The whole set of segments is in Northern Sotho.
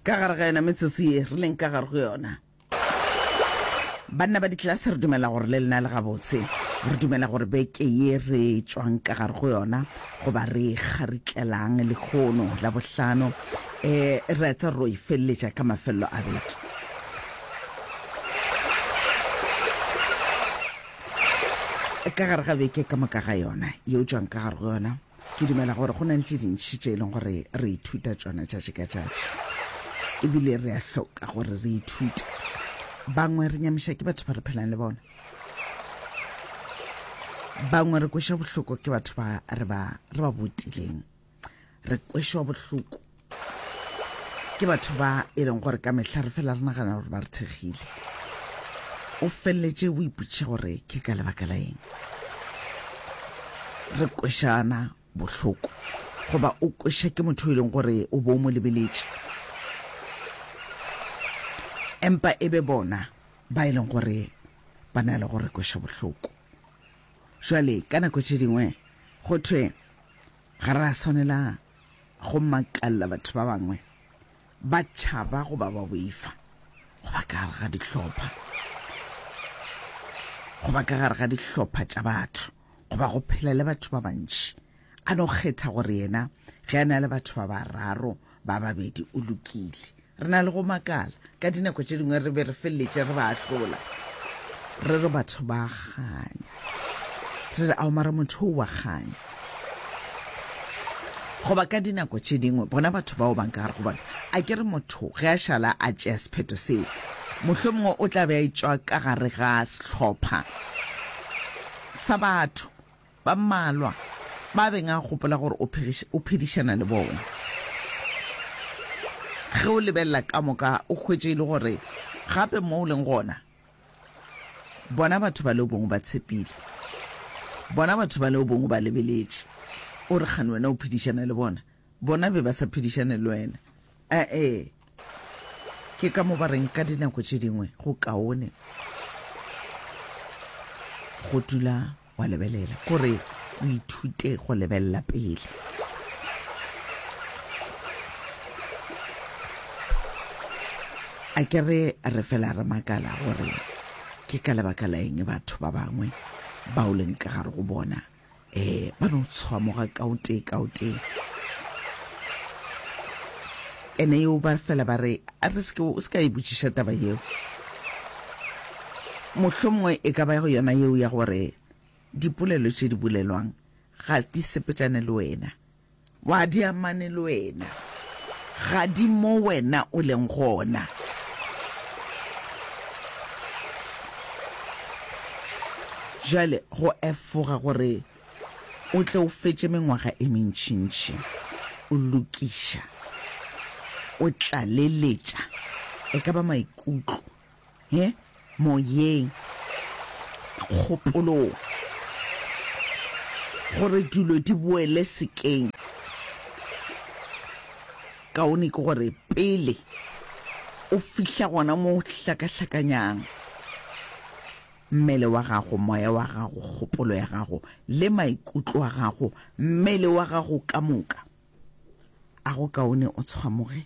Ka gare ga yona metsotso ye re leng ka gare go yona, banna ba ditlelase, re dumela gore le lena le gabotse, re dumela gore beke ye re tšwang ka gare go yona, goba re e kgaritlelang lehono la bohlano, um re a tsa ro e feleletša ka mafelelo a beke. Ka gare ga beke ka moka ga yona, ye o tšwang ka gare go yona, Ke dumela gore go na le tše dintši tše e leng gore re ithuta tšona tšatši ka tšatši ebile re a hloka gore re ithute bangwe re nyamiša ke batho ba re phelang le bona bangwe re kweša bohloko ke batho ba re ba botileng re kwešwa bohloko ke batho ba e leng gore ka mehla re fela re nagana gore ba re thekgile o feleletše o ipotše gore ke ka lebaka la eng re kwešana bohloko goba o kweša ke motho e leng gore o bo mo lebeletše empa e be bona ba e leng gore ba na le gore kweša bohloko jale ka nako tše dingwe go thwe Ga re a swanela go makalela batho ba bangwe ba tšhaba goba ba boifa go ba ka gare ga dihlopha, go ba ka gare ga dihlopha tša batho goba go phela le batho ba bantši. A no kgetha gore yena ge a na le batho ba bararo ba babedi o lokile re na le go makala ka dinako tše dingwe re be re feleletše re ba ahlola re re batho ba kganya re re aomara motho o wa kganya goba ka dinako tše dingwe bona batho bao bang ka gare go bona a ke re motho ge a šala a tšea sephetho seo mohlho mongwe o tla be a etswa ka gare ga sehlopha sa batho Ba mmalwa ba a beng a gopola gore o, o phedišana le bona. Ge o lebelela ka moka, o hwetše e le gore gape mo o leng gona, bona batho bale o bongwe ba tshepile, bona batho bale o bongwe ba lebeletše, o re kgane wena o phedišana le bona, bona be ba sa phedišane le wena. A-e, ke ka mo ba reng ka dinako tše dingwe go kaone go dula wa lebelela gore o ithute go lebelela pele. A ke re re fela re makala gore ke ka lebaka la eng batho ba bangwe ba o leng ka gare go bona um ba no tshwamoga ka o tee ka o tee ene yeo ba fela ba re a re seke o se ka e botšiša taba yeo mohlho mongwe e ka ba yona yeo ya gore dipolelo tše di bolelwang ga di sepetšane le wena Wa di amane le wena. Ga di mo wena o leng gona. Jale go efoga gore o tle o fetše mengwaga e mentšintši o lokiša, o tlaleletša e ka ba maikutlo He, moyeng, kgopolong, gore dilo di boele sekeng. Kaone ke gore pele o fihla gona mo hlakahlakanyang mmele wa gago, moya wa gago, kgopolo ya gago le maikutlo a gago, mmele wa gago ka moka, a go kaone o tshwamoge.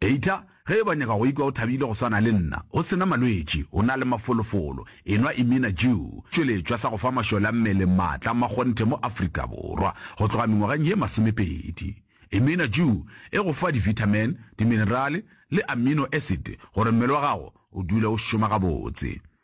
Eita, ge e ba nyaka go ikwa o thabile go swana le nna, o sena malwetši, o na le mafolofolo, enwa Imina Jew, tšweletšwa sa go fa mašole a mmele maatla a makgonthe mo Afrika Borwa go tloga mengwageng ye masomepedi. Imina Jew e go fa divitamin, diminerale le amino acid gore mmele wa gago o dule o šoma gabotse.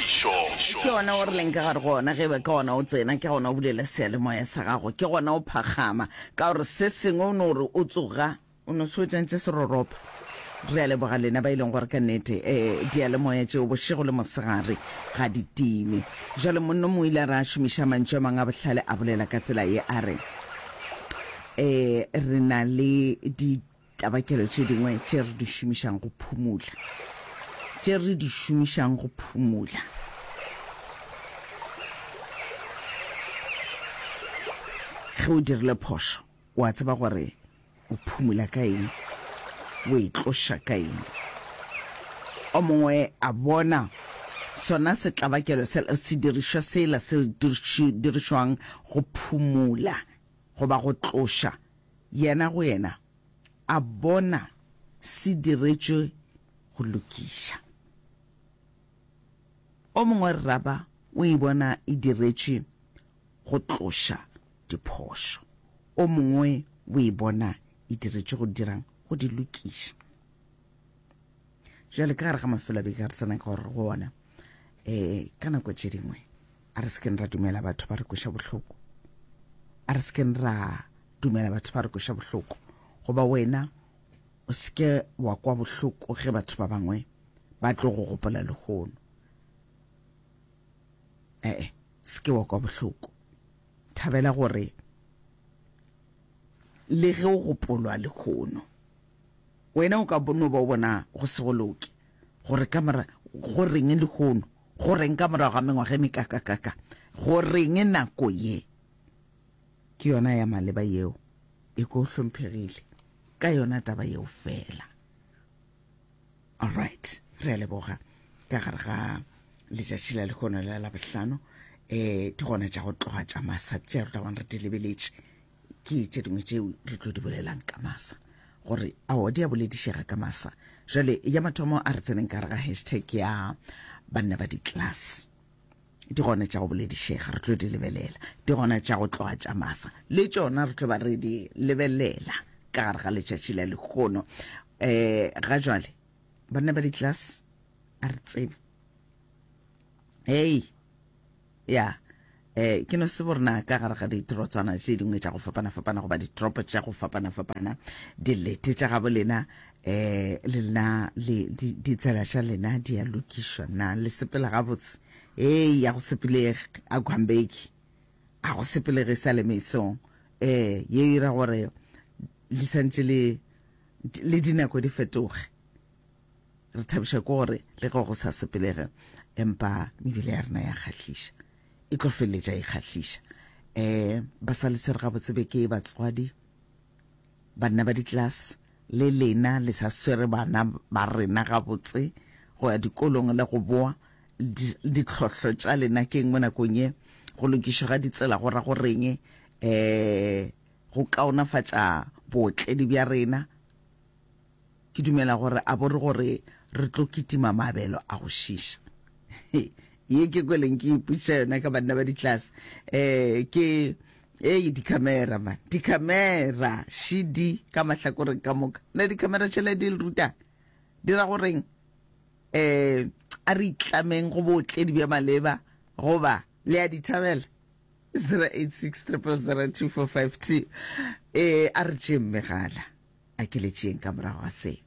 Ke gona o rileng ka gare go ona, ge be ka gona o tsena, ke gona o bulela seyalemoya sa gago, ke gona o phagama, ka gore se sengwe o no re o tsoga, o no se wetšantše seroropa. Re a leboga lena ba e leng gore ka nnete eh, diyalemoya tšeo bošego le mosegare ga di time. Bjale monno mo ile a re a šomiša mantšu a mangwe a bohlale, a bolela ka tsela ye a re, Eh, re na le di Tabakelo tše dingwe tše re di šomišang go phumula. Tše re di šomišang go phumula. Ge o dirile phošo, o a tseba gore o phumula ka eng, o e tloša ka eng. O mongwe a bona sona setlabakelo sela, sedirišwa sela se dirišwang go phumula goba go tloša Yena go yena a bona se diretšwe go lokiša. O mongwe rraba o e bona e diretšwe go tloša diphošo, o mongwe o e bona e diretšwe go dirang? Go di lokiša. Bjale ka gare ga mafelo a beke a re tsenang ka gore go ona, um ka nako tše dingwe, a re sekeng ra dumela batho ba re kweša bohloko a re sekeng ra dumela batho ba re kweša bohloko goba wena o seke wa kwa bohloko ge batho ba bangwe ba tlo go gopola lehono ee seke wa kwa bohloko thabela gore le ge o gopolwa lehono wena o ka bono ba o bona go segoloke gore ka mora go reng lehono Go reng ka morago ga mengwaga e mekakakaka? Go reng nako ye ke yona ya maleba yeo e ko hlomphegile ka yona taba yeo fela? All right, re a leboga ka gare ga letšatši la lekgono la labohlano um ke gona tša go tloga tša masat tša re tlabang re di lebeletše ke tše dingwe tšeo re tlo di bolelang ka masa gore ao di a boledišega ka masa jale ya mathomo a re tseneng ka re ga hashtag ya banna ba di-class di gona tša go boledišega re tlo di lebelela di gona tša go tloga tša masa le tšona re tlo ba re di lebelela ka gare ga letšatši la lekgono um ga jale banna ba di-class a re tsebe hei ya eh, ke no se borna ka gare ga ditirotswana tše dingwe tša go fapana-fapana goba ditoropo tša go fapana-fapana dilete tša gabo lena um le lena ditsela tša lena di ya lokišwa na le sepela gabotse ee ya go sepelege a gwambeki a go sepelege sa le mesong um ye ira gore le santse le dinako di fetoge Re thabišwa ke gore le ge go sa sepelege empa mebele ya rena ya kgahliša, e tlo feleletša e kgahliša. Um ba sa le tshwere gabotse be ke batswadi, banna ba ditlase le lena le sa swere bana ba rena gabotse go ya dikolong le go boa ditlhohlo tša lena ke eng mo nakong ye go lokišo ga ditsela go ra go reng um go kaonafatša bootledi bja rena Ke dumela gore a bo re gore re tlo kitima maabelo a go šiša. He, ye ke kweleng ke ipotšiša yona ka banna ba ditlase. Eh, ke, ei, dikhamera, man, dikhamera, šidi ka mahlakoreng ka moka. Na dikhamera tšela di le rutang? Di ra goreng? Eh, a re itlameng go bootledi bja maleba, goba le a dithabela? 086 000 245 2. Eh, a re tšeeng megala. A ke le tšeeng ka morago ga se.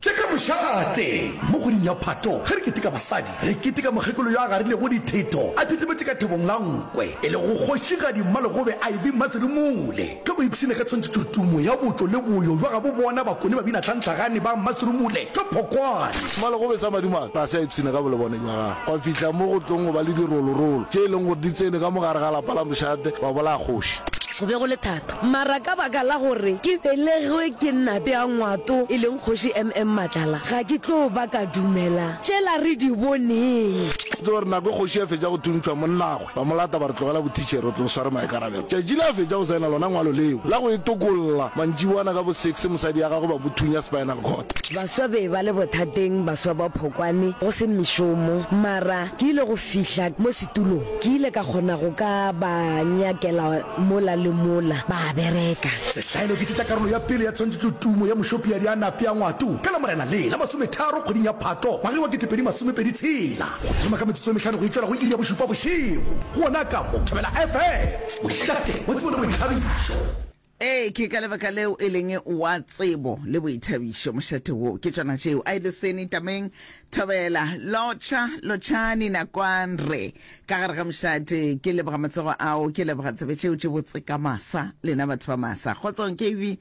Tše ka mošala a tee. Mo kgweding ya Phato, ge re keteka basadi, re keteka mokgekolo yo a garilego ditheto a thethemetše ka thobong la nkwe, e lego Kgošigadi Mmalegobe Ivy Mmasirumule. Ge go ipshina ka tshwantšhetšo tumo ya botšo le boyo bja gabo bona bakone babina tlhantlhagane ba Mmasirumule ka phokwane. Mmalegobe sa madimabe ga se a ipshina ka bolebone bja gagwe gwa fihla mo go tlong go ba le dirolorolo tše e leng gore di tsene ka mo gare ga lapa la mošate wa bolaya kgoši. Go be go le thata Mara ka baka la gore ke belegwe ke Nate ya Ngwato e leng Kgoši MM Matlala, ga ke tlo ba ka dumela tšela re di boneng. Ke tseba gore nako e Kgoši a fetša go thuntšhwa, monnagwe ba mo lata ba re tlogela bothitšhere, o tlo sware maikarabelo. Tšatši le a fetša go saena lona ngwalo leo la go e tokolla, mantšiboana ka bo six mosadi ya gagwe ba mo thunya spinal cord. Baswa be ba le bothateng, baswa ba Phokwane go se mešomo, mara ke ile go fihla mo Tulo, Ke ile ka kgona go ka ba nyakela mola le mola, ba a bereka. Sehlaelo, Ke tšetša karolo ya pele ya tshwantšhetšo tumo ya mošopiadi a nape a ngwatu ka Lamorena le la masometharo kgweding ya Phatlo ngwageng wa ketepedi masomepedi tshela go thoma ka metsotso e mehlano go e tšwela go iri ya bošupa bošego gona ka mo Thobela FM, mošate wa tsebo le boithabišo. Ee, ke ka lebaka leo e leng wa tsebo le boithabišo mošate woo. Ke tšona tšeo, a e loseni tameng, thobela, lotšha, lotšhani, nakwan, re, ka gare ga mošate. Ke leboga matsego ao, ke leboga tsebe tšeo tše botse ka masa, lena batho ba masa. Kgotsong, KV.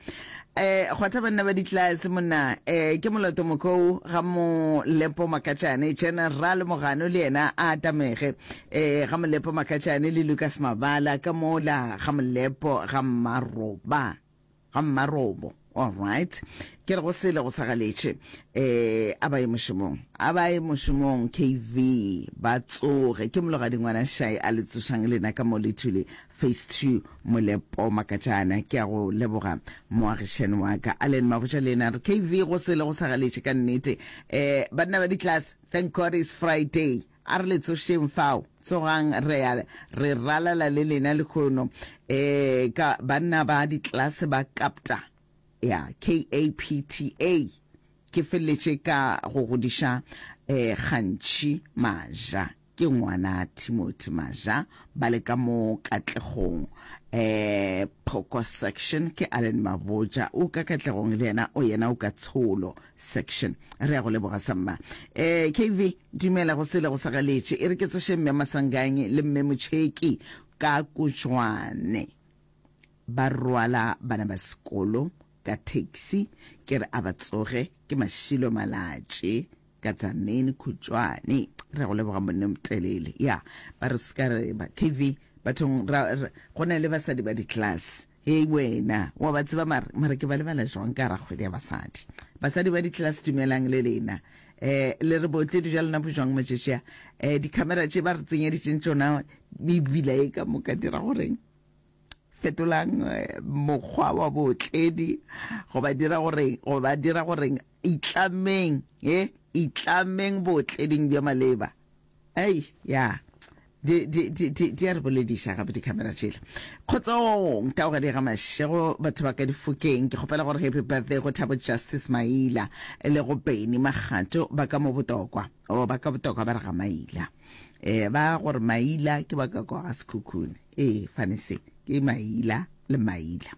Eh, kgwatha banna ba ditlase, monna, eh, ke moloto mokou, ga mo lepo makatšane, General Mogano le yena a atamege. Eh, ga Molepo Makatšane le Lucas Mabala ka mola ga Molepo ga Mmaroba ga Mmarobo all right ke re go sele go sagaletše eh a ba ye mošomong a ba ye mošomong KV ba tsoge ke mologadi ngwana shai a le tsošang lena ka mo lethule phase 2 Molepo Makatšana ke a go leboga moagišani wa ka Allen Magoja le ena re KV go sele go sagaletše ka nnete eh banna ba di class thank God it's Friday A re le tsošeng fao, tsogang re ya re ralala le lena lehono. Ee, ka banna ba ditlelase ba kapta, ya KAPTA. Ke feleletše ka go godiša eh, gantši maja. Ke ngwana Timothy Maja, ba le ka mo Katlegong, eh, Phoko Section. Ke Allen Maboja, o ka Katlegong le yena, o yena o ka Tsholo. section re ya go leboga sa mma eh kv dumela go sele go sa galetše e re ke tsoše mme masanganye le mme motšheki ka kotšwane ba rwala bana ba sekolo ka taxi ke re a ba tsoge ke mašilo malatše ka tsamene khutšwane re go leboga monne motelele ya ba re se ka re ba kv bathong go na le basadi ba di-class Hei wena, wa ba tseba mare, mare ke ba lebala jwang ka gara kgwele ya basadi? Basadi ba ditlelase dumelang le lena. Eh, le re bootledi bja lona bo jwang matšatši a? Eh, dikhamera tše ba re tsenyeditšeng tšona mebila e ka moka dira goreng? fetolang eh, mokgwa wa bootledi goba dira goreng goba dira goreng itlameng e eh, itlameng bootleding bja maleba Ei, ya, di, di, di, di, di a re bolediša gape dikhamera tšela. Kgotsong, taogadi ga mašego, batho ba ka difokeng. Ke kgopela gore happy birthday go Thabo Justice Maila le go Benny Magato ba ka mo botokwa. O, ba ka botokwa ba re ga Maila. E, ba gore Maila ke ba ka kwa ga Sekhukhune. E, fane se, ke Maila le Maila.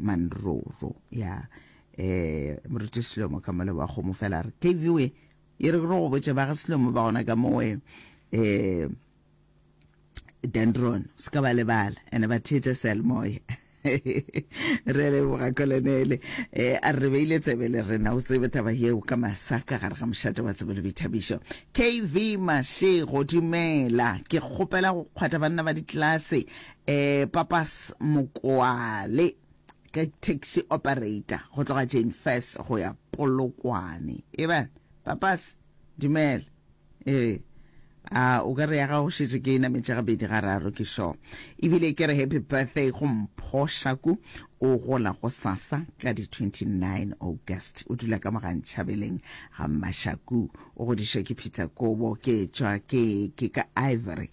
manroro ya eh moruti selomo ka mole wa kgomo fela re kv we e re go botse ba ga selomo ba gona ka mowe eh dendron se ka ba lebala ene ba theetsa selmoya re le boga kolonele eh a re beile tsebe le rena o tsebe taba yeo ka masaka gare ga mošate wa tsebe le boithabišo kv mashego dumela ke kgopela go kgwatha banna ba ditlase Eh Papas Mokoale ke taxi operator go tloga Jane First go ya Polokwane. E ba Papas dumela. Eh a o ka re ya ga go šetše ke ena metša ga bedi ga raro ke sho. E bile ke re happy birthday go mphoša ku o gola go sasa ka di 29 August. O dula ka mogantšhabeleng ga Mashaku. O godišwe ke Peter Kobo ke tšwa ke ke ka Ivory.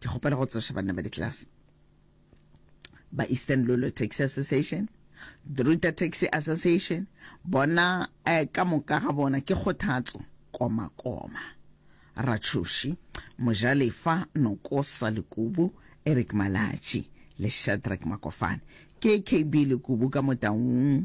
ke kgopela go tsoša banna ba ditlelase ba eastern lolo taxi association druta taxi association bona eh, ka moka ga bona ke kgothatso komakoma ratshoši mojalefa nokosa lekubu eric malatši le shadrack makofane ke kb lekubu ka motaung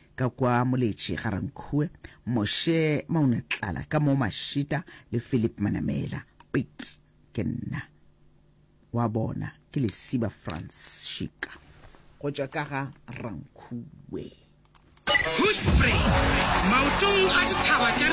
ka kwa Moletši ga Rankhuwe, Moshe Maunatlala ka mo Mashita le Philip Manamela. Pits ke nna. Wa bona, ke Lesiba Frans Shika. Go tšwa ka ga Rankhuwe. Hoedspruit, maotong a dithaba tša